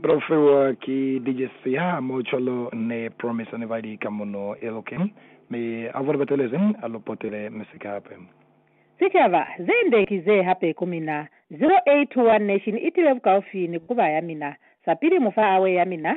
Profiwa ki DJ Siya, Mocholo ni Promise ne bali ka muno Elokeng, mi abo ne ba telezi a lu potele misika hape. Sicaba, ze nde ki ze hape ku mina. 0821 Nation i tile bukaufi ni kuba ya mina. Sapili mu fa awe ya mina,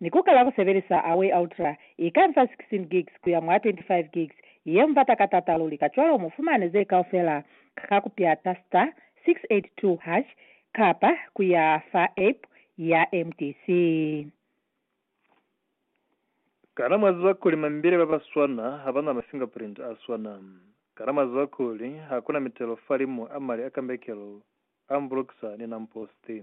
Ni ku kala ku sebelisa Away Ultra, i ka nsa 16 gigs ku ya mwa 25 gigs, ye mu bata ka t'ata luli. Kacwalo mu fumane ze kaufela ka ku pyata star 682 hash kapa ku ya fa app ya mtc. Kana mwa ziba kuli mambile ba ba swana ha ba na mafingerprint a swana? Kana mwa ziba kuli ha ku na mitelo fa limu a mali a kambekelo Ambrogsa ni Namposti.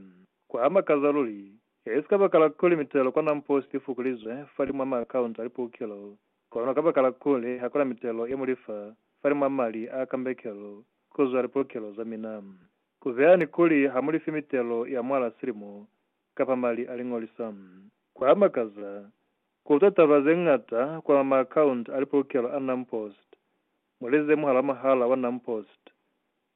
Ku a makaza luli! I si kabakala kuli mitelo kwa Namposti i fukulizwe falimw'a maakaunta a lipukelo, kono kabakala kuli ha ku na mitelo ye mu li fa falimw'a mali a kambekelo ku zwa lipukelo za mina. Ku beha ni kuli ha mu lifi mitelo ya mwal'a silimo kapa mali a liñolisa. Ku a makaza ku utwa taba ze ñata kwa maakaunta a lipukelo a Namposti, mu li zemuha lwa muhala wa Namposti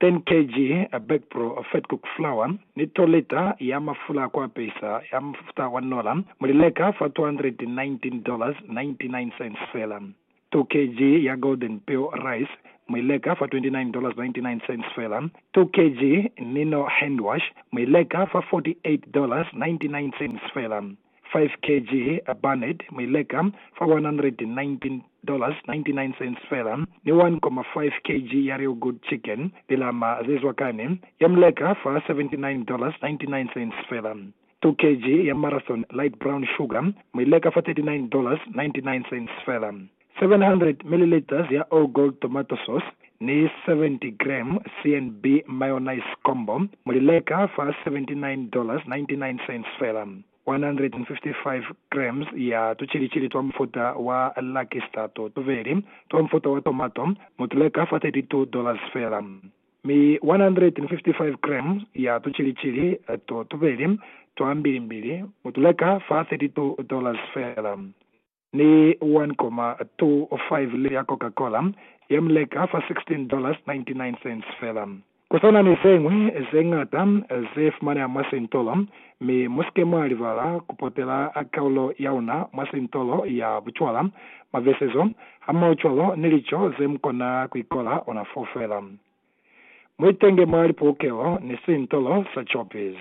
10 kg a Backpro Fat Cook Flour ni to lita ya mafula a ku apesa ya mufuta wa nola mu li leka fa $219.99 fela. 2 kg ya Golden Peel Rice mu i leka fa $29.99 fela. 2 kg Nino Handwash mu i leka fa $48.99 fela. 5 kg a burned mu i leka fa $119.99 fela, ni 1.5 kg ya Real Good Chicken, lilama ze zwa kani, ya mu leka fa $79.99 fela. 2 kg ya Marathon Light Brown Sugar mu i leka fa $39.99 fela. 700 milliliters ya All Gold Tomato Sauce ni 70 gram CNB Mayonnaise Combo mu li leka fa $79.99 fela. 155 grams ya tucilicili twa mufuta wa Lucky Star to tubeli twa mufuta wa tomato mu tu leka fa $32 fela. Mi 155 grams ya tucilicili to tubeli twa mbilimbili mu tu leka fa $32 fela. ni 1,25 lita ya Coca-Cola ye mu leka fa $16.99 fela. Ku sa na ni ze ñwi ze ñata ze fumaneha mwa sintolo, mi mu si ke mwa libala ku potela kaulo ya una mwa sintolo ya bucwala, mabesezo, hamaocwalo ni lico ze mu kona ku ikola ona fo fela. Mu itenge mwa lipulukelo ni sintolo sa Choppies.